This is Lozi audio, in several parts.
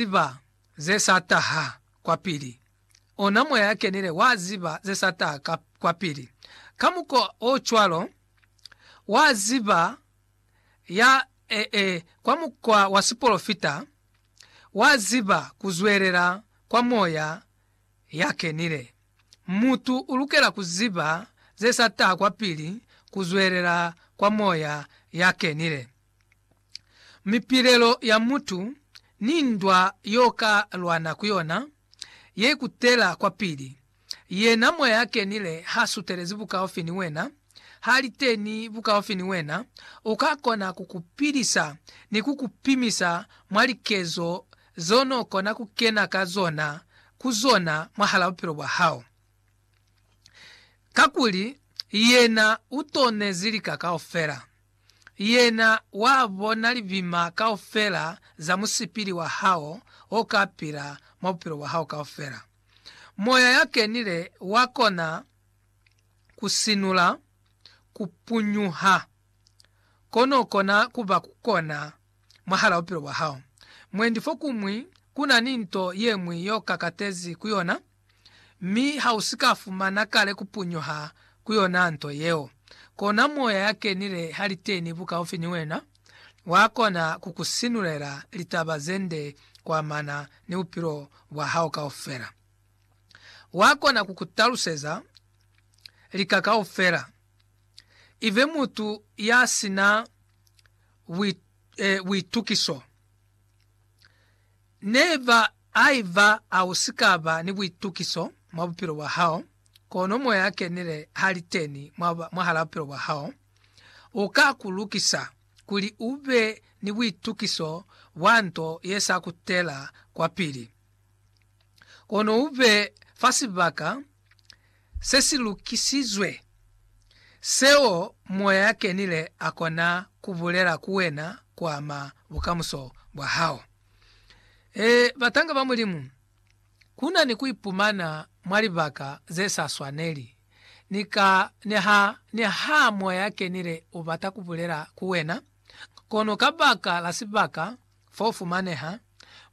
ziba ze sa taha kwapili. Ona Moya ya Kenile wa ziba ze sa taha ka, kwapili. Ka mukwa o cwalo, wa ziba ya, e, e, kwa mukwa wa sipolofita, wa ziba ku zwelela kwa Moya ya Kenile. Mutu u lukela ku ziba ze sa taha kwapili ku zwelela kwa Moya ya Kenile. mipilelo ya mutu ni ndwa yo ka lwana ku yona ye kutela kwapili. Yena Moya ya Kenile ha sutelezi bukaufi ni wena, ha li teni bukaufi ni wena, u ka kona ku ku pilisa ni ku ku pimisa mwa likezo zeo n'o kona ku kena ka zona ku zona mwahal'a bupilo bwa hao. Kakuli Yena u tonezi lika kaufela. Yena wa bona libima kaufela za musipili wa hao o ka pila mwa bupilo bwa hao kaufela. Moya ya Kenile wa kona ku sinula ku punyuha ko no kona ku ba ku kona mwahala bupilo bwa hao. Mwendi fokuñwi ku na ni nto ye ñwi yo kakatezi ku yona. mi ha u si ka fumana kale ku punyuha ku yona nto yeo, kona Moya ya Kenile ha li teni bukaufi ni wena, wa kona ku ku sinulela litaba ze nde ku amana ni bupilo bwa hao kaufela. Wa kona ku ku taluseza lika kaufela. I be mutu ya si na buitukiso. Ne ba Haiba ha u si ka ba ni buitukiso mwa bupilo bwa hao, kono Moya a Kenile ha li teni mwahalaa bupilo bwa hao, u ka ku lukisa kuli u be ni buitukiso bwa nto ye sa kutela kwapili, kono u be fa sibaka se si lukisizwe, seo Moya a Kenile a kona ku bulela ku wena ku ama bukamuso bwa hao. E, batanga ba Mulimu, kuna ni kuipumana mwa libaka ze sa swaneli. Ni ka, niha, niha Moya a kenile ubata kubulela ku wena, kono kabaka la sibaka fo ufumaneha,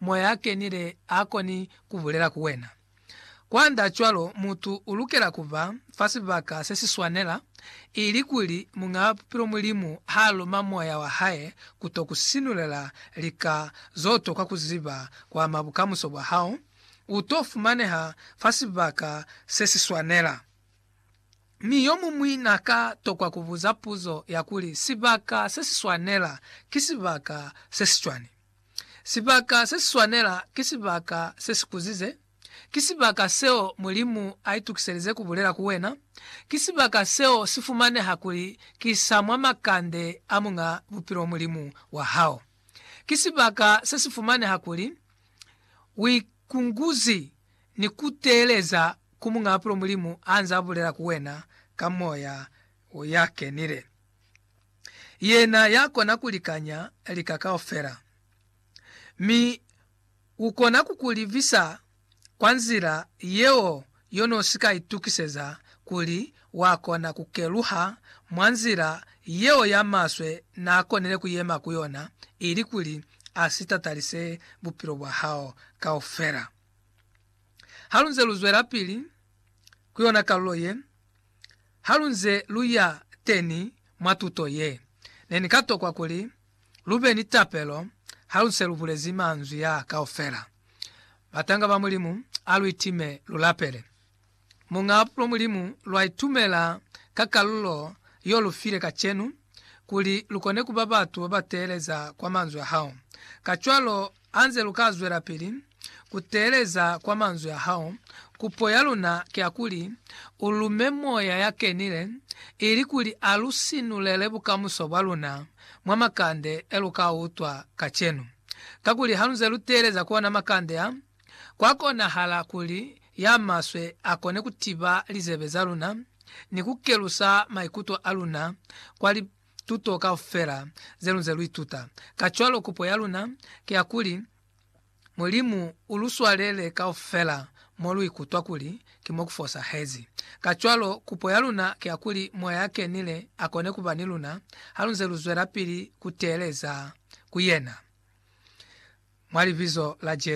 Moya a kenile akoni kubulela ku wena. Kwandaacwalo, mutu u lukela ku ba fa sibaka se si swanela, ilikuli Muñaa Bupilo Mulimu ha loma moya wa hae ku to ku sinulela lika z'o tokwa ku ziba ku ama bukamuso bwa hao. U t'o fumaneha fa sibaka se si swanela. Mi yo muñwi n'a ka tokwa ku buza puzo ya kuli, Sibaka se si swanela ki sibaka se si cwañi? Sibaka se si swanela ki sibaka se si kuzize, ki sibaka seo Mulimu a itukiselize ku bulela ku wena, ki sibaka seo si fumaneha kuli ki sa mwa makande a Muñ'a Bupilo Mulimu wa hao, ki sibaka se si fumaneha kuli u ikunguzi ni ku teeleza ku Muñ'a Bupilo Mulimu ha nz'a bulela ku wena ka Moya ya Kenile. Yena ya kona ku likanya lika kaufela, mi U kona ku ku livisa kwa nzila yeo yo no si ka itukiseza kuli wa kona ku keluha mwa nzila yeo ya maswe na konile ku yema ku yona, ilikuli a si tatalise bupilo bwa hao kaufela. Ha lu nze lu zwelapili ku yona kalulo ye, Halunze luya teni mwa tuto ye, nenikatokwa kuli lube ni tapelo haluse lubulezi manzwi aa kaufela, Batanga ba Mulimu, aluitime lulapele Muñaa Pulo. Mulimu lwaitumela ka kalulo yolufile kacenu kuli lukone kuba batu babateeleza kwa manzwi ahao, kacwalo Hanze lu ka zwelapili ku teeleza kwa manzwi a hao, kupo ya luna ki ya kuli u lume Moya ya Kenile ili kuli a lu sinulele bukamuso bwa luna mwa makande e lu ka utwa kacenu. Kakuli hanze lu teeleza ku ona makande a, kwa konahala kuli ya maswe a kone ku tiba lizebe za luna ni ku kelusa maikuto a luna kwa tuto kaufela zelunze luituta. Kacwalo kupo yaluna ki ya kuli, Mulimu uluswalele kaufela moluikutwa kuli ki mo kufosahezi. Kacwalo, kupo yaluna ki ya kuli Moya ya Kenile akone kuba ni luna halunze luzwelapili kuteeleza ku Yena, mwa Libizo la Jesu.